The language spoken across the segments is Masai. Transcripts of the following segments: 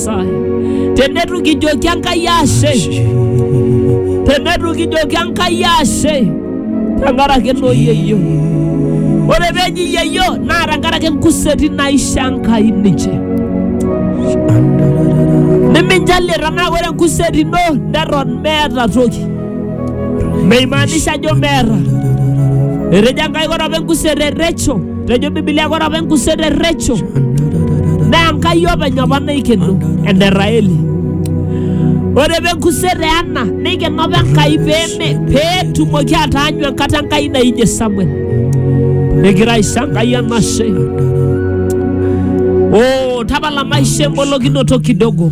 Nyasaye. Tenetu kijoki Enkai ashe, tenetu kijoki Enkai ashe tenkaraki noo yeyio. Ore peji yeyio naa tenkaraki nkuseti naisho Enkai ninche. Niminjalie tenaa ore enkuseti ino neton meeta toki. Meimaanisha ajo meeta. Etejo Enkai ore apa enkuseti e Rachel Tejo Biblia kore apa enkuset e Recho naa Enkai openy apa naikeno ene Raeli. Ore apa enkuset e Ana neikeno apa Enkai peeme peetumoki ataanyu enkata Enkai naijie Samuel. Negira aisho Enkai enashe. Oh, tapala maisha embolokinoto kidogo.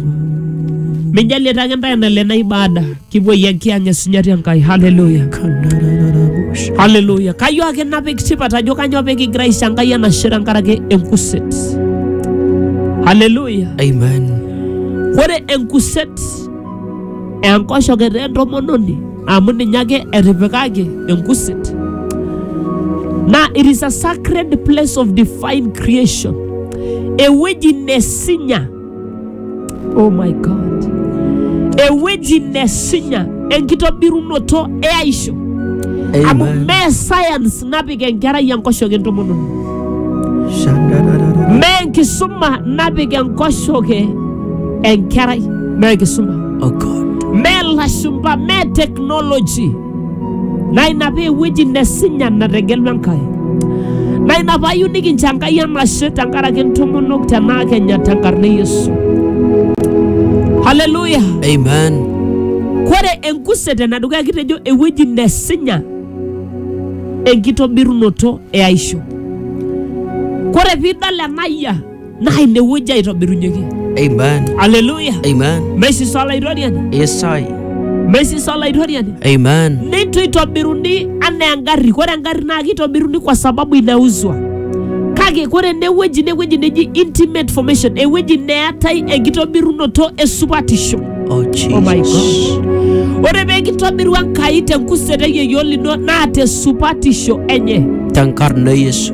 Mijalie ake intae enale na ibada. Kipuoi enkianya esinyati Enkai. Haleluya. Haleluya. Kayieu ake napik tipat ajo kanyoo pee kigira aisho Enkai enashe tenkaraki enkuset. Haleluya. Amen. Ore enkuset enkoshoke taa entomononi amu ninye ake etipikaki enkuset. Naa it is a sacred place of divine creation. Ewueji nesinya Oh my God. Ewueji nesinya enkitobirunoto e aisho. Amu Amen. mee science napik enkerai enkoshoke entomononi. Shandararara. Mee enkisuma napik enkoshoke enkerai. Mee enkisuma. Oh God. Mee lashumba, mee technology. naa ina paa ewueji nesinya nategelua Enkai. Naa ina paa ayieu nikincho Enkai enashe tenkaraki intomonok tenaa kenya tenkarna e Yesu. Haleluya! Amen. Kore enkuset enedukuya kitejo ewueji nesinya enkitobirunoto e aisho. Kore piidol ena yia naa ine wueji aitobirunyeki Amen. aleluya Amen. meisisa olaitoriani Yes, I. meisisa olaitoriani Amen. neitu itobiruni anaa engarri kore engarri naa kitobiruni kwa sababu inauzwa kake kore enewueji inewueji neji intimate formation ewueji neetai enkitobirunoto esupatisho Oh, Jesus. Oh my God. ore pee kitobiru enkai tenkuset eyieyio lino naa tesupatisho enye Tenkarna Yesu.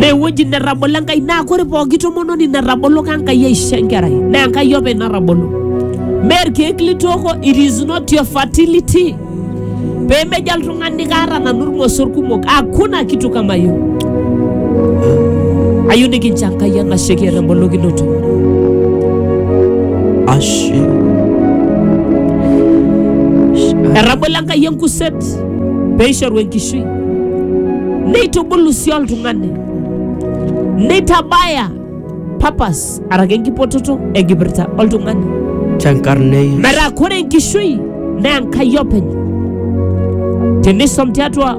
newueji netabolo enkai naa kore pooki tomononi natabolo ka enkai aisho enkerai naa enkai openy natabolo mee irkeek litooko it is not your fertility pemejo oltung'ani kaata nanu irmosor kumok hakuna kitu kama hiyo ayieu nikincho enkai enashe kiata embolokinoto Ashe. etabolo enkai Kayieu Kuset pee eishoru enkishui, neitubulu sii oltung'ani, neitabaya purpose araki enkipototo enkipirta oltung'ani. tenkarna e Yesu. Metaa kore enkishui naa Enkai openy. Tenisom tiatua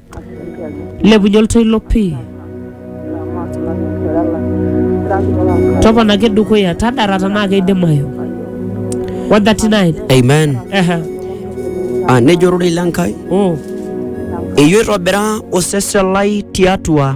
Lepunye oltoilo pii. Toponaki dukuya, tadara tenaa keidimayu. 139. Amen. Ehe. Ah, nejo ororei le Nkai, Oh. eitu itobira osesen lai tiatua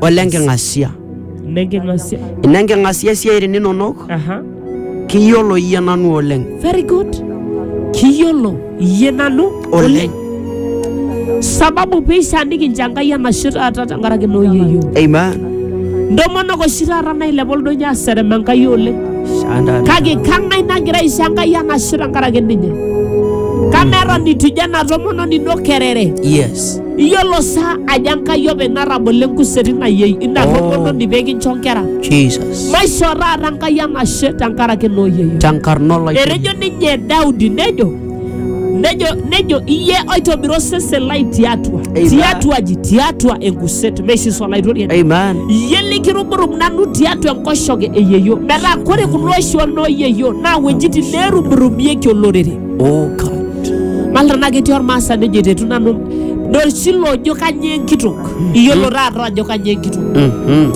ole nking'asia. Nenking'asia. Ine nking'asia isiaitin inonok, Aha. kiyiolo iyie nanu oleng. Very good. Kiyiolo iyie nanu Oleng. Sababu peishaa nikincha Enkai enashe taata tenkaraki ina oyieyio. Amen. Ntomonok oshi taata nailepa oldonyo aserem Enkai oleng. Shanda. Kake kang'ai nagira aisho Enkai enashe tenkaraki ninye? Kameton itu ijo ena tomononi ino kerere. Yes. iyiolo sa ajo enkai openy natabolo enkuseri nayieu ina Oh. tomononi pee kincho nkera Jesus. maishoo taata enkai enashe tenkaraki nooyieyu Tenkarna olaitobirani. etejo ninye daudi nejo nejo nejo iye oitobira osesen lai tiatua Amen. tiatua aji tiatua enkuset meishis olaitoriani Amen. iye likiruburubu nanu tiatua enkoshoke eyeyio metaa kore kulo oshi onooyeyio naa wuejitin neeruburubieki olorere Oh God. Mal tenaa ketii ormaasani ojo etetu nanu dorshilo ojo kanyoo enkitok. Iyiolo taata ajo kanyoo enkitok. Mhm.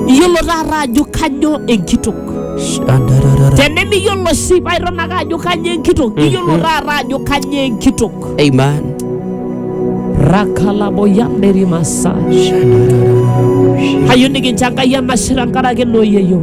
Iyiolo taata ajo kanyoo enkitok. Shadarara. Tenemiyiolo sii paa iton ake ajo kanyoo enkitok. Iyiolo taata ajo kanyoo enkitok. Amen. Rakalaboyanderi massage. Shadarara. Kayieu nikincho Enkai enashe tenkaraki ina oyieyio.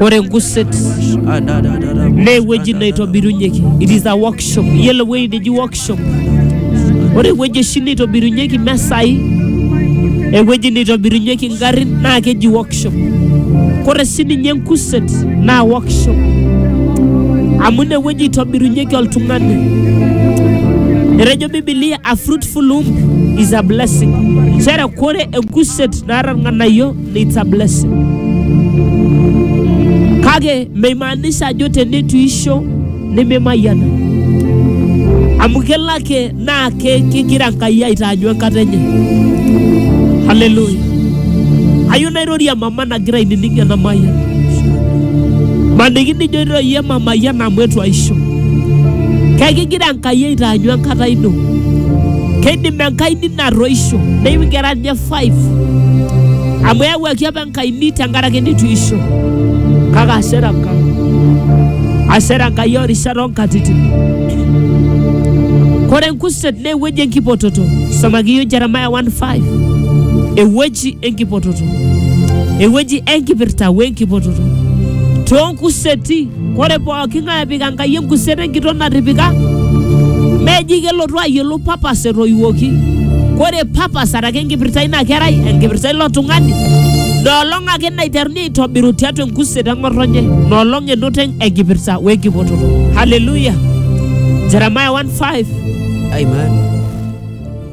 Ore enkuset naa ewueji naitobirunyeki. It is a workshop. Iyiolo ewueji neji workshop. Ore ewueji oshi naitobirunyeki mesai, ewueji naitobirunyeki ngarrin naa keji workshop. Ore sii ninye enkuset naa workshop. Amu ine wueji itobirunyeki oltung'ani. Etejo Biblia a fruitful womb is a blessing. Nchere ore enkuset naata irng'anayio it's a blessing kake meimaanisha ajo teneitu isho nememayiana amu kelo ake naa ke- kegira Enkai aitaanyu enkata enye haleluya ayieu nairorie mama nagira ainining ena mayian maniki nijo iroyie mamayian amu etu aisho kekigira Enkai aitaanyu enkata ino keidim Enkai nino atoisho neingera ninye 5 amu eyawuaki apa enkaini tenkaraki nitu isho kake asera Enkai asera Enkai orishat onkatitin kore enkuset naa ewueji enkipototo somaki yiok Jeremiah 1:5 ewueji enkipototo ewueji enkipirta wenkipototo toonkuseti Ore pooki ng'ae epik Enkai enkuset enkitok natipika, meji kelotu ayiolou papas etoiwuoki. Ore papas araki enkipirta eina kerai, enkipirta ilo tung'ani, ina olong ake naiteruni aitobiru tiatua enkuset eng'otonye, ina olong enoto enkipirta we nkipototo. Haleluya! Jeremiah 1:5. Amen.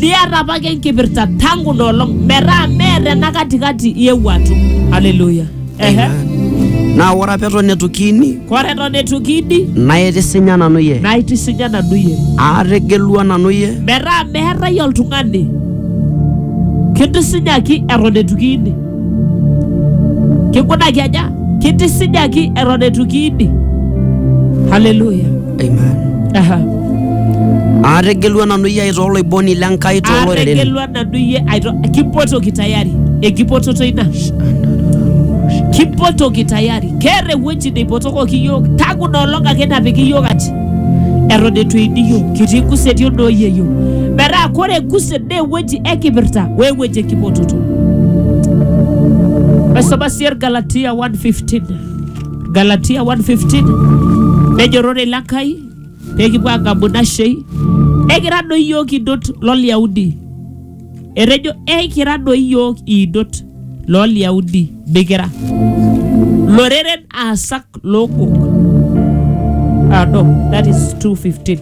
liata apake enkipirta tangu ina olong metaa meeta ena katikati iewuo atum haleluya Ehe. Amen. Naa ore apa eton eitu kiini kore eton eitu kiidi naitisinya nanu iyie naitisinya nanu iyie aategelua nanu iyie metaa meetae oltung'ani kitisinyaki eton eitu kiini kikunaki aja kitisinyaki eton eitu kiini haleluya Amen. Aha. Aategelua nanu iyie aitoo oloiboni le Nkai too loreren. Aategelua nanu iyie aito kipotoki tayari ekipototo ina kipotoki tayari keeta ewueji neipotokoki iyiook tangu ina olong ake napiki iyiook aji eton eitu eini iyiook kitii kuseti onooyie iyiook metaa kore kuset naa ewueji ekipirta we ewueji ekipototo maisoma sii Galatia 1:15 Galatia 1:15 nejorrore ilo Enkai pee kipuo aagamu ina shei ekira doi iyiook idot lolyaudi etejo ekira doi iyiook idot lolyaudi mikira loreren aasak lookok ah, no, that is 215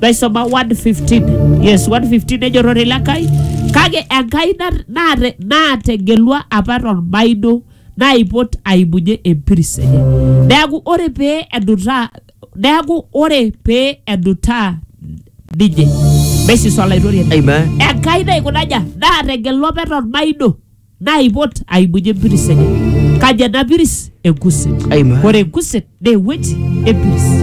naisoma 115 yes 115 nejorrore ilo Enkai kake Enkai nat- naate- naategelua apa tolmaino naipot aibunye empiris enye neaku ore pee edutaa neaku ore pee edutaa ninye mesis olaitoriani Amen. enkai naikunaja naategela ope tormaino naipot aibunye empiris enye kaji ena piris enkuset Amen. ore enkuset naa ewueji empiris